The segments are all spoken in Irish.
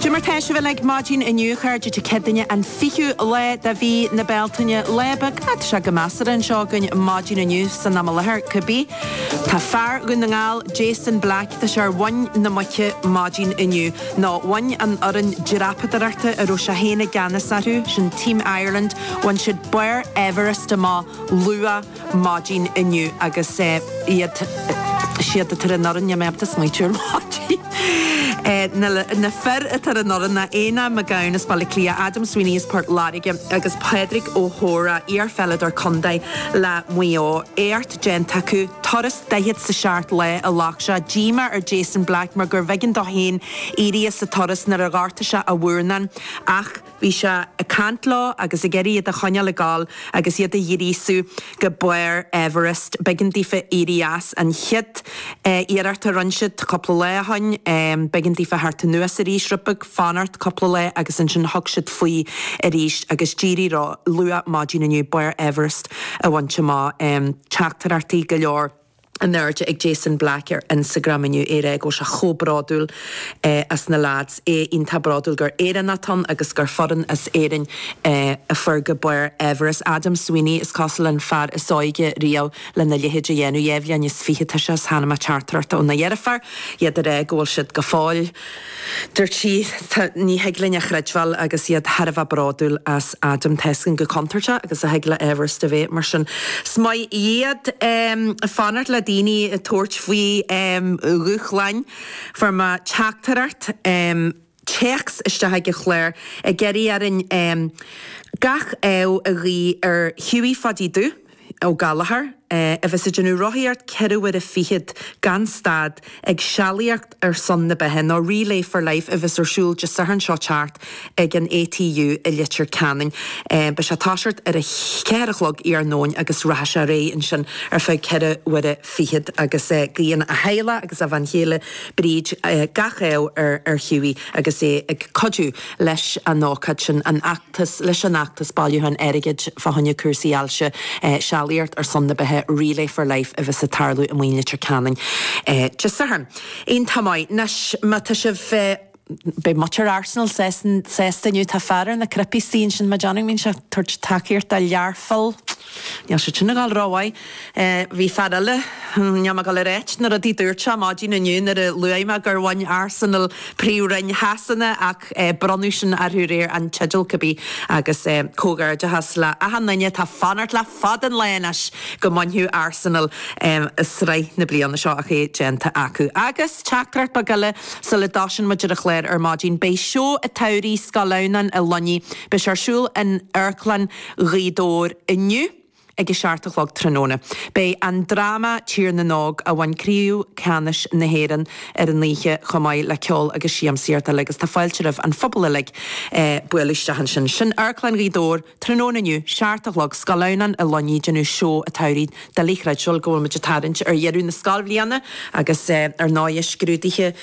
Dé mar tá sibh uilig maidin inniu a chairde Dé Céadaoine an fichiú lá de mhí na Bealtaine. Lá bog, tá sé go measartha anseo againn maidin inniu san am i láthair cibé. Tá fear Dhún na nGall, Jason Black, tá sé ar mhuin na muice maidin inniu. Nó bhain an fhoireann dreapadóireachta a raibh sé féin i gceannas orthu, sin Team Ireland, bhain siad barr Everest amach luath. maidin inniu agus iad siúd atá ar an fhoireann, mé ag smaoitiú ar maidin, na fir atá ar an fhoireann ná Éanna McGowan as Baile Átha Cliath, Adam Sweeney as Port Láirge agus Pádraig Ó hEora, iarpheileadóir contae le Maigh Eo. Éacht déanta acu, turas daichead is a seacht lá a ghlac sé. Díomá ar Jason Black mar gurbh éigean dó féin éirí as an turas nuair a ghortaigh sé a mhurnán ach. Bhí sé ag caint leo agus ag iarraidh iad a choinneáil ag gabháil agus iad a ghríosú go barr Everest. B'éigean daofa éirí as an chéad iarracht a rinne siad cúpla lá ó shin. B'éigean daofa theacht anuas arís, rud beag, fanacht cúpla lá agus ansin thug siad faoi arís agus d'éirigh leo luath maidin inniu barr Everest a bhaint amach. Teachtaireachtaí go leor. in airde ag Jason Black ar Instagram inniu é ag rá go bhfuil sé chomh bródúil as na leaids, é iontach bródúil gur Éireannach atá ann agus gur foireann as Éirinn a fuair go barr Everest. Adam Sweeney, is cosúil, an fear is óige riamh lena leithéid a dhéanamh. Dhá bhliain is fiche atá sé is chonaic mé teachtaireacht óna dheirfiúr, iad ag rá go bhfuil siad go fóill. Dúirt sí, Tá, ní thig linn a chreidbheáil agus iad thar a bheith bródúil as Adam. Tá a fhios againn chomh contúirteach agus a thig le Everest a bheith mar sin. Is maith iad fanacht le daoine atá ag tabhairt faoi dhúshláin fuair mé teachtaireacht téacs isteach chuig an chlár ag iarraidh orainn gach ádh a ghuí ar Hughie Phadaí Dubh. Ó Gallchóir, a bheas ag déanamh rothaíocht ceithre huaire fichead gan stad ag sealaíocht ar son na beatha, nó Relay for Life a bheas ar siúl Dé Sathairn seo teacht ag an ATU i Leitir Ceanainn. Beidh sé ag toiseacht ar a cheathair a chlog iarnóin agus rachaidh sé ar aghaidh ansin ar feadh ceithre huaire fichead agus guíonn a theaghlach agus a bhean chéile Bríd gach ádh ar Hughie agus é ag cuidiú leis an ócáid sin, an fheachtas, leis an fheachtas bailiúcháin airgid fá choinne cúrsaí ailse, Sealaíocht ar son na Beatha, Relay for Life a bheas ag tarlú amuigh i Leitir Ceanainn Dé Sathairn. Iontach maith. Anois, má tá sibh. Beidh muintir Arsenal sásta inniu, tá fear ar na cnaipí istigh ansin, Maidhc Downing, mbíonn sé ag tabhairt tacaíocht do Learpholl. Níl siad sin ag dul rómhaith. Bhí fear eile, níl mé ag dul a ráit na rudaí a dúirt sé, maidin inniu nuair a luaigh mé gur bhain Arsenal príomhroinn Shasana ach bronnadh sin orthu aréir an teideal cibé agus comhghairdeachas le achan duine atá ag fanacht le fada an lá anois go mbainfeadh Arsenal sraith na bliana seo ach é déanta acu. Agus teachtaireacht bheag eile sula dtosaíonn muid ar an chlár ar maidin, beidh seó an tsamhraidh, Scoil Adhamhnáin an Luinnigh, beidh sé ar siúl in Amharclann. Ghaoth Dobhair inniu ag a seacht a chlog tráthnóna. Beidh an dráma Tír na nÓg, a bhain craobh ceannais na hÉireann ar an oíche, chomh maith le ceol agus siamsaíocht eile agus tá fáilte roimh an phobal uilig bualadh isteach ansin. Sin Amharclann Ghaoth Dobhair tráthnóna inniu, seacht a chlog, Scoil Adhamhnáin an Luinnigh, ag déanamh seó an tsamhraidh Doiligh a chreidbheáil go bhfuil muid ag tarraingt ar dheireadh na scoilbhliana agus ar ndóigh scrúduithe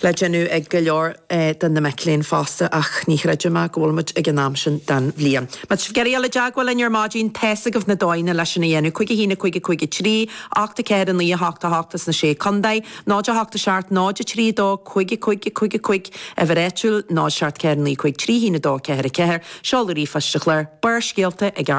le déanamh ag go leor de na mic léinn fosta ach ní chreidim go bhfuil muid ag an am sin den bhliain. Má tá sibh ag iarraidh a dhul i dteagmháil linn ar maidin tá's agaibh na dóigheanna leis sin a dhéanamh, cúig a haon, a cúig, a cúig a trí, a hocht a ceathair, a naoi a hocht, a hocht as na sé contae, 0 8 a seacht, 0 3 a dó, cúig a cúig, a cúig a cúig, uimhir áitiúil, 0 7 4 9 5 3 1 2 4 4, seoladh ríomhphoist an chláir, Barrscéalta ag.